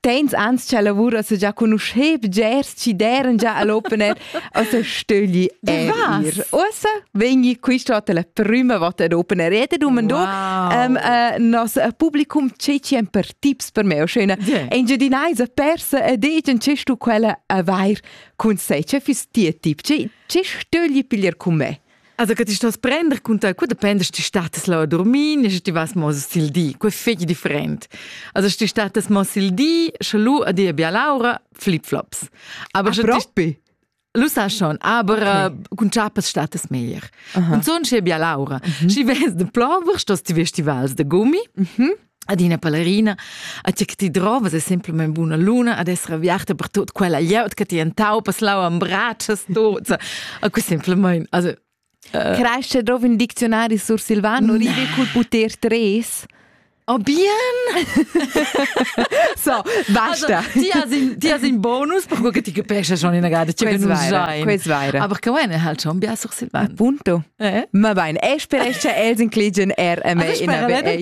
Teins ans cha lavura se già conoschè bgers chi deran già all'open air o se stögli ir. Uossa vegni quista la prima volta ad open air ed domando wow. um, uh, nos uh, publicum che ci han per tips per me o schöne yeah. Engiadinaise persa e digen che stu quella avair con sai che fis tie tip che che stögli piglier con me. Also che ti stos prender cun ta, qua dependes ti statas là a dormir, e ti vas mo sil di, qua fetg different. Also ti statas mo sil di, sche lu a dir bia Laura, flip-flops. Aber ah, propi? Lu sa schon, aber okay. Eh, cun chapas statas meglier. Aha. Und so c'è bia Laura. Mhm. Schi vens de plover, stos ti vestivals de gummi. Mhm. ad ina ballerina, a tge ti drovas è semplamain buna luna ad essere aviarta per tut quella glieud che ti entau paslau en braccias tuzza, a cui semplamain. Also, äh, Creisce dove in dizionari sursilvan non ride cul poter tres? Oh bien! so, basta. Also, ti, has in, ti has in bonus, perché che ti capisci schon in agada, che non sai. Quest vaira. Aber che è halt schon bià sursilvan. Punto. Eh? Mabain, e sperescha els incligen er a me ina be ei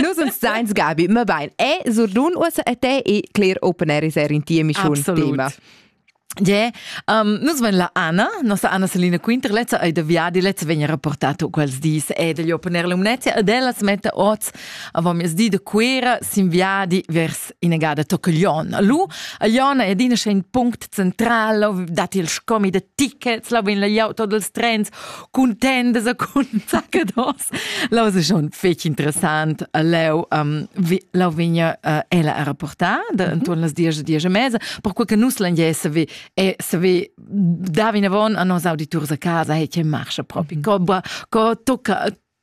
Nus uns zains Gabi, mabain, e surdun uossa a te e clear open air is er in ti mi schon tema. Yeah. Um, nus ven la Anna, nossa Anna Selina Quinter, lezza ei de viadi, lezza vegna rapportato quels dis e degli open air lumnezia ed ella smetta oz a vomias di de Cuera sin viadi vers inegada tocaglion. Lu a Jona ed in scen punct central dat il scomi de tickets, la bin layout tot els trens cun tendas e cun zaccados. Lau se schon fetch interessant leu um, lau vigna uh, ella a rapportar de mhm. intorn las dies e dies e mese, perquei che nus lan je savi e savi davin avon a nos auditurs a casa e che marcha proprio mhm. co, co tocca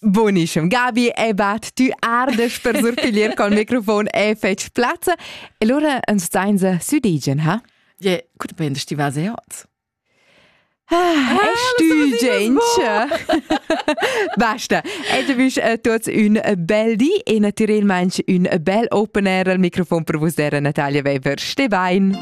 Buonischem Gabi, è bat tü ardeš per surpiglier col microfon e fetg plazza e lura ans zainza südigen, ha? Je, gut ben, sti vas e hoz. Ah, è stügentsche. Basta. Ed wüsch a tuots ün bel di e natüralmaing ün bel open air al microfon per vus dera Natalia Weber. Ste bain!